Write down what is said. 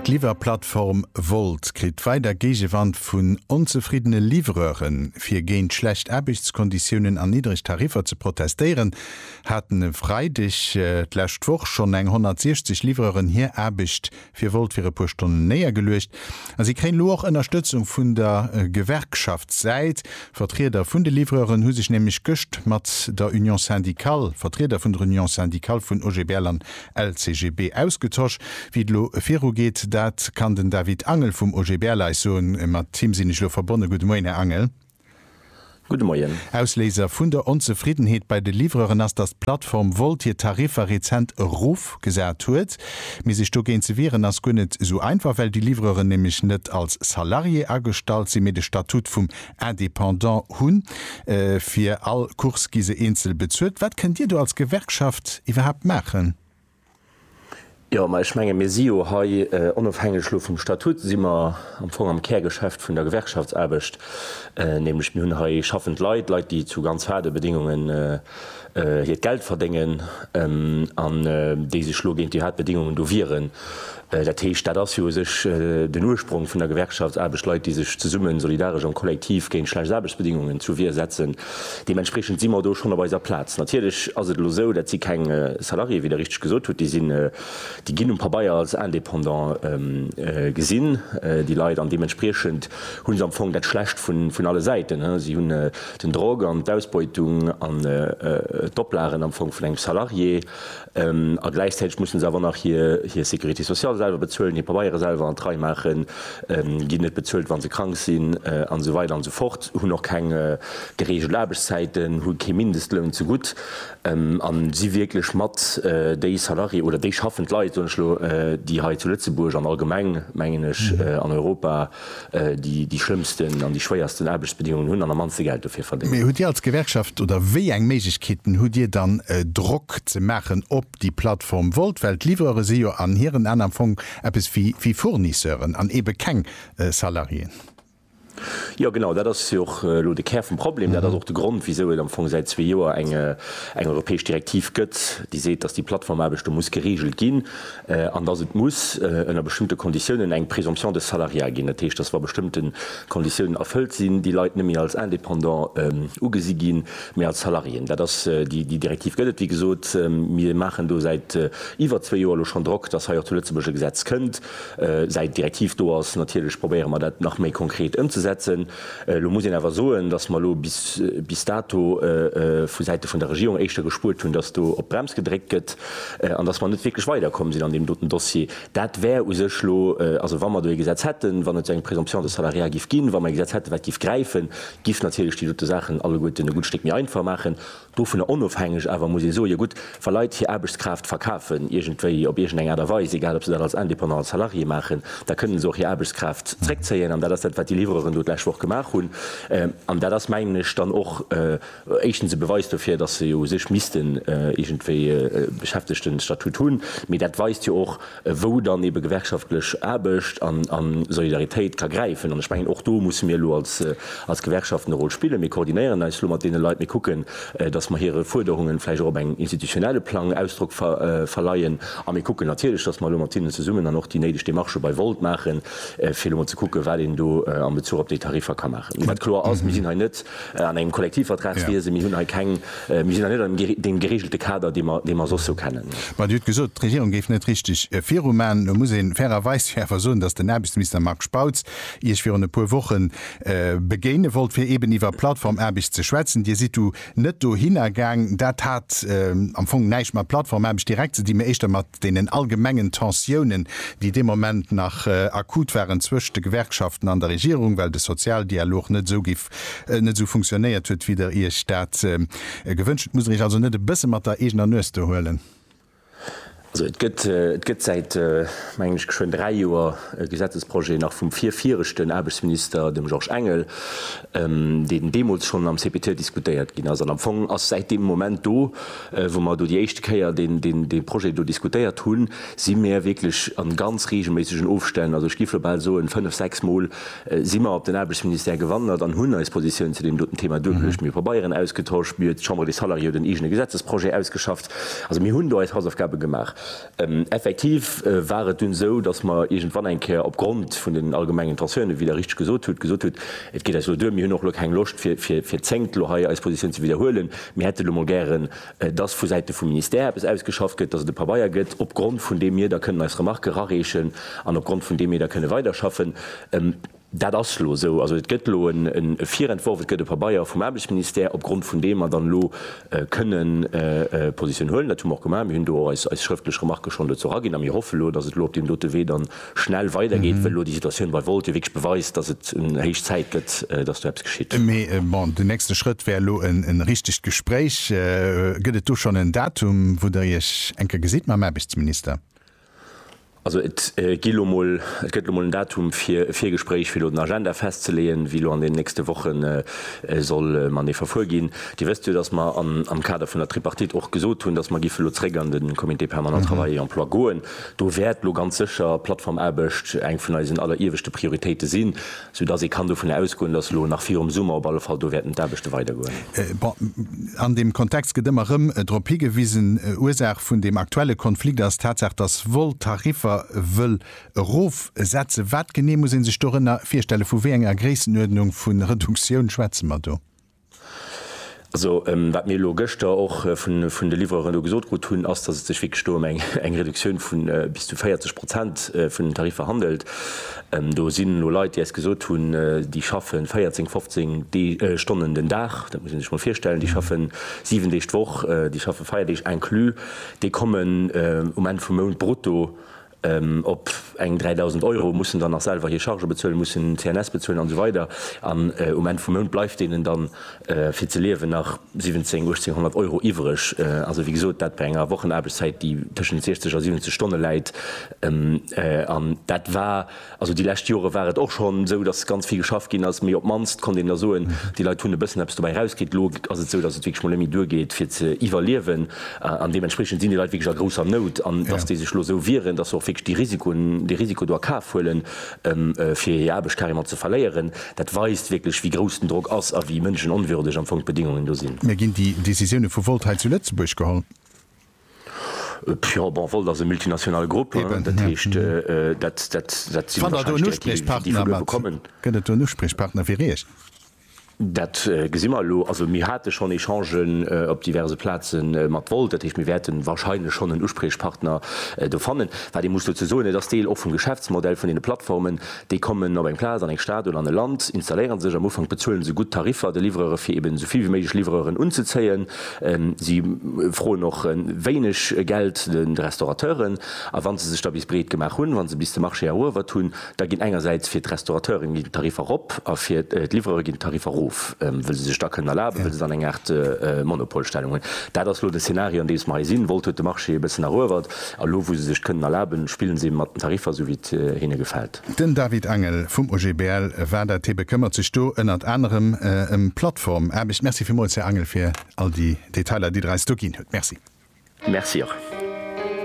D'Liwwerplattform Wolt kritt weider Géigewand vun onzefriddene Livreuren. Fir géint schlecht Aarbechtskonditiounen an niddreg Tariffer ze protestéieren, haten e Freideg d'lescht Woch schonn eng 160 Livreuren hir Aarbecht fir Wolt fir e puer Stonnen néiergeluecht. A si kréien elo och Ënnerstëtzung vun der Gewerkschaftssäit. Vertrieder vun de Livreuren hu sech nämlech gëscht mat der Union syndicale, Vertrieder vun der Union syndicale vun OGBL an LCGB ausgetosch, wéi et elo virugeet. Dat kann den David Angel vum OGBL eis soen. Mat him sinn ech elo verbonne. Gudde Moien, Här Angel. Gudde Moien. Ausléiser vun der Onzefriddenheet bei de Livreuren ass, datt d'Plattform Wolt hir Tariffer rezent erof gesat huet. Mee sech dogéint ze wieren ass guer net esou einfach, well déi Livreuren nämlech net als Salarié agestallt sinn, mee de Statut vum Indépendants hunn. Fir all Course gi se eenzel bezuelt. Wat kënnt Dir do als Gewerkschaft iwwerhaapt maachen? Jo, ma ech menge mir si jo hei, onofhängeg elo vum Statut, si mer am Fong am Kärgeschäft vun der Gewerkschaftsaarbecht, nämlech mir hunn hei schaffend Leit, Leit déi zu ganz haarde Bedéngungen hiert Geld verdéngen an déi sech elo géint déi haart Bedéngungen do wieren. Dat heescht, dat ass jo u sech den Ursprong vun der Gewerkschaftsaarbecht, Leit, déi sech zesummen, solidaresch am Kollektiv géint schlecht Aarbechtsbedingungen zur Wier setzen. Deementspreechend si mer do schonn op eiser Plaz. Natierlech ass et elo esou, dat si keng Salariéen, wéi Der richteg gesot hutt. Déi sinn, déi ginn um Pabeier als Indépendant gesinn, déi Leit, an deementspriechend hu se am Fong dat Schlecht vun alle Säiten. Si hunn den Drock an d'Ausbeutung an d'Oplagen am Fong vun engem Salarié. A gläichzäiteg mussen se awer nach hir Sécurité sociale selwer bezuelen, hir Pabeiere selwer an d'Rei maachen, ginn net bezuelt, wa se krank sinn an esou weider an esou fort, hunn och keng gereegelt Aarbechtszäiten, hu kee Mindestloun zegutt a si wierklech mat déi Salarié oder déi schaffend Leit, soen ech elo, déi hei zu Lëtzebuerg an allgemeng, mengen ech, an Europa, déi déi schlëmmsten an déi schwéiersten Aarbechtsbedingungen hunn an am mannste Geld dofir verdéngen. Mee hutt Dir als Gewerkschaft, oder wéi eng Méiglechkeeten hutt Dir dann Drock ze maachen op déi Plattform Wolt, well d'Livreuren si jo an hiren An am Fong eppes wéi Fournisseuren an eebe keng Salariéen? Jo genau, dat ass jo och elo de Kär vum Problem. Dat ass och de Grond wisou et am Fong säit zwee Joer eng europäesch Direktiv gëtt, déi seet, datt déi Plattformaarbecht do muss gereegelt ginn. an dass et muss ënner bestëmmte Konditiounen eng Présomption de salariat ginn, dat heescht, dass wa bestëmmte Konditiounen erfëllt sinn, déi Leit net méi als Indépendant ugesi ginn, mee als Salariéen. Dat ass déi Direktiv gëtt et, wéi gesot. Mir maachen do säit iwwer zwee Joer elo schonn Drock, dass hei och zu Lëtzebuerg e Gesetz kënnt. Säit d'Direktiv do ass, natierlech probéiere mer dat nach méi konkret ëmzesetzen. Elo muss een awer soen, dass mer elo bis dato vu Säite vun der Regierung éischter gespuert hunn, dass do op d'Brems gedréckt gëtt an dass mer net wierklech weiderkomm sinn an deem doten Dossier. Dat wär u sech elo, also wa mer do ee Gesetz hätten, wann et eng Présomption de salariat giff ginn, wa mer ee Gesetz hätten, wat giff gräifen, giff natierlech déi dote Saachen alleguerten e gutt Stéck méi einfach maachen. Dovunner onofhängeg awer muss ee soe gutt, wa Leit hir Aarbechtskraaft verkafen, iergendwéi, op iergendeng Aart a Weis, egal ob se dat als Indépendant, als Salarié maachen, da kënnen se och hir Aarbechtskraaft zréckzéien. An dat ass dat, wat déi Livreuren do d'lescht Woch gemaach hunn. An dat ass, mengen ech, dann och éischtens e Beweis dofir, datt se jo u sech missten iergendwéi e Beschäftegtenstatut hunn, mee dat weist jo och, wou dann ebe gewerkschaftlech Aarbecht a Solidaritéit ka gräifen. An ech mengen, och do musse mir elo als Gewerkschaften e Rôle spillen. Mir koordinéieren eis elo mat deene Leit, mir kucken, datt mer hire Fuerderungen vläicht och op engem institutionelle Plang Ausdrock verleien a mir kucken natierlech, datt mer elo mat hinnen zesummen dann och déi néideg Demarchë bei Volt maachen, fir elo emol ze kucken, wat een do am Bezuch op déi Tariffer ka maachen. Wat kloer ass, Mir sinn hei net An engem Kollektivvertrag wier se. Mir hunn hei keng, mir sinn hei net an deem gereegelte Kader, dee mer, dee mer soss sou kennen. Mä Dir hutt gesot, d'Regierung géif net richteg virumaen. Elo muss ee fairerweis jo awer soen, datt den Aarbechtsminister Marc Spautz Iech virun e puer Woche begéine wollt, fir eeben iwwer Plattformaarbecht ze schwätzen. Dir sidd du net dohinner gaang. Dat hat am Fong näischt mat Plattformaarbecht direkt ze dinn, mä éischter mat deenen allgemengen Tensiounen, déi dee Moment nach akut waren zwëscht de Gewerkschaften an der Regierung, well de Sozialdialog net esou géif, net esou funktionéiert huet, wéi Der Iech dat gewënscht hutt. Musst Der Iech also net e bësse mat der eegener Nues do huelen? Also et gëtt, et gëtt säit, mengen ech, geschwënn dräi Joer e Gesetzesprojet, nach vum virviregten Aarbechtsminister, dem Georges Engel, deen deemools schonn am CPT diskutéiert ginn ass. An am Fong ass säit deem Moment do, Wou mer do déi éischte Kéier dee Projet do diskutéiert hunn, si mir wierklech a ganz reegelméissegen Ofstänn, also ech géif elo bal soen fënnf, sechs Mol, si mer op den Aarbechtsministère gewandert an hunn eis Positioun zu deem doten Thema duergeluecht. Mir hu Pabeieren ausgetosch, mir huet d'Chambre des Salariés huet en eegene Gesetzesprojet ausgeschafft. Also mir hunn do eis Hausaufgabe gemaach. Effektiv war et dunn esou, datt mer iergendwann eng Kéier opgrond vun den allgemengen Tensiounen, wéi Der richtig gesot hutt, gesot hutt, Et geet eis elo duer, mir hunn och elo keng Loscht fir zéngt elo hei eis Positioun ze widderhuelen, mir hätten elo mol gären, datt vu Säite vum Ministère eppes ausgeschafft gëtt, datt et e Pabeier gëtt, opgrond vun deem mir da kënnen eis Remarquë rareechen an opgrond vun deem mir da kënne weiderschaffen. Dat ass elo esou. Also et gëtt elo e Virentworf, et gëtt e Pabeier vum Aarbechtsministère, opgrond vun deem mer dann elo kënne Positioun huelen. Dat hu mer och gemaach. Mir hunn do och eis schrëftlech Remarquë schonn dozou eraginn a mir hoffe elo, datt et elo op deem dote Wee dann schnell weidergeet, well elo déi Situatioun bei Wolt jo wierklech beweist, datt et héich Zäit gëtt, datt do eppes geschitt. Mee bon, den nächste Schrëtt wär elo e richtegt Gespréich. Gëtt et do schonn en Datum, wou Der Iech eng Kéier gesitt mam Aarbechtsminister? Also et gëtt elo mol en Datum fir e Virgespréich, fir elo den Agenda festzeleeën, wéi elo an deenen nächste Woche soll matenee verfuer ginn. Dir wësst jo, datt mer am Kader vun der Tripartite och gesot hunn, datt mer giffe elo zréck an de Comité permanent Travail et emploi goen. Do wäert elo ganz sécher d'Plattformaarbecht eng vun eisen allerieweschte Prioritéite sinn. Sou dass ee kann dovun ausgoen, dass elo nach virum Summer op alle Fall do wäerten d'Aarbechte weidergoen. Bon, an deem Kontext gëtt ëmmer erëm drop higewisen, Ursaach vun deem aktuelle Konflikt ass d'Tatsaach, dass Vol d'Tariffer wëll erofsetzen. Wat genee muss ee sech dorënner virstellen? Vu wéi enger Gréissenuerdnung vu Reduktioun schwätze mer do? Also, wat mir elo gëschter och vun de Livreuren do gesot krut hunn, ass, dass et sech wierklech do ëm eng Reduktioun vu bis zu 40 Prozent vun den Tariffer handelt. Do sinn elo Leit, déi eis gesot hunn, déi schaffe 14, 15 Stonnen den Dag, dat muss ee sech mol virstellen, déi schaffe 7 Deeg d'Woch, déi schaffe Feierdeeg inclus, déi kommen um Enn vum Mount brutto Op eng 3.000 Euro mussen dann nach selwer hir Chargen bezuelen, mussen CNS bezuelen an esou weider an um Enn vum Mount bleift deenen dann fir ze liewen nach 17, 1800 Euro iwwreg. Also wéi gesot, dat bei enger Wochenaarbechtszäit déi tëschent 60 a 70 Stonne läit an dat war, Also déi lescht Jore war et och schonn esou, datt ganz vill geschafft ginn ass, mee op d'mannst konnt een da soen, déi Leit hunn e bëssen eppes dobäi erauskritt. Elo ass et esou, datt et wierklech mol net méi duergeet fir ze iwwerliewen an deementspriechend sinn déi Leit wierklech a grousser Nout. An datt déi sech elo esou wieren, datt se och wierklech dee Risiko do a Kaf huelen, fir hir Aarbecht carrément ze verléieren, dat weist wierklech wéi grouss den Drock ass a wéi mënschenonwürdeg am Fong d'Bedingungen do sinn. Mä ginn déi Decisioune vu Volt hei zu Lëtzebuerg geholl? Jo, bon, Volt ass e multinationale Grupp. Dat heescht, dat sinn wahrscheinlech Direktiven, déi vun uewe kommen. Fannt Der do en Uspriechpartner? Gëtt et do en Uspriechpartner fir Iech? Dat gesi mer elo. Also mir hate schonn Echangen op diverse Plaze mat Volt. Dat heescht, mir wäerte wahrscheinlech schonn en Uspriechpartner do fannen. Wat ee muss dozou soen, et ass Deel och vum Geschäftsmodell vun deene Plattformen. Déi kommen op eng Plaz, an eng Stad oder an e Land, installéiere sech. Am Ufank bezuele se gutt Tariffer de Livreuren, fir eeben esou vill wéi méiglech Livreuren unzezéien. Si froen och wéineg Geld de Restaurateuren. A wa se sech da bis breet gemaach hunn, wa se bis de Marché eruewert hunn, da ginn engersäits fir d'Restaurateuren ginn d'Tariffer erop a fir d'Livrere ginn d'Tariffer erof, wëll se sech da kënnen erlaben, wëll se dann eng Aart Monopolstellung hunn. Dat ass elo de Szenario, an deem mer hei sinn. Volt huet de Marché e bëssen eruewert a lo, wou se sech d'kënnen erlaben, spillen se mat den Tariffer, esou wéi et hinne gefält. Den David Angel vum OGBL, war dat, hie bekëmmert sech do ënnert anerem ëm Plattformaarbecht. Merci villmools, Här Angel, fir all déi Detailer, déi Der eis do ginn hutt. Merci. Merci och.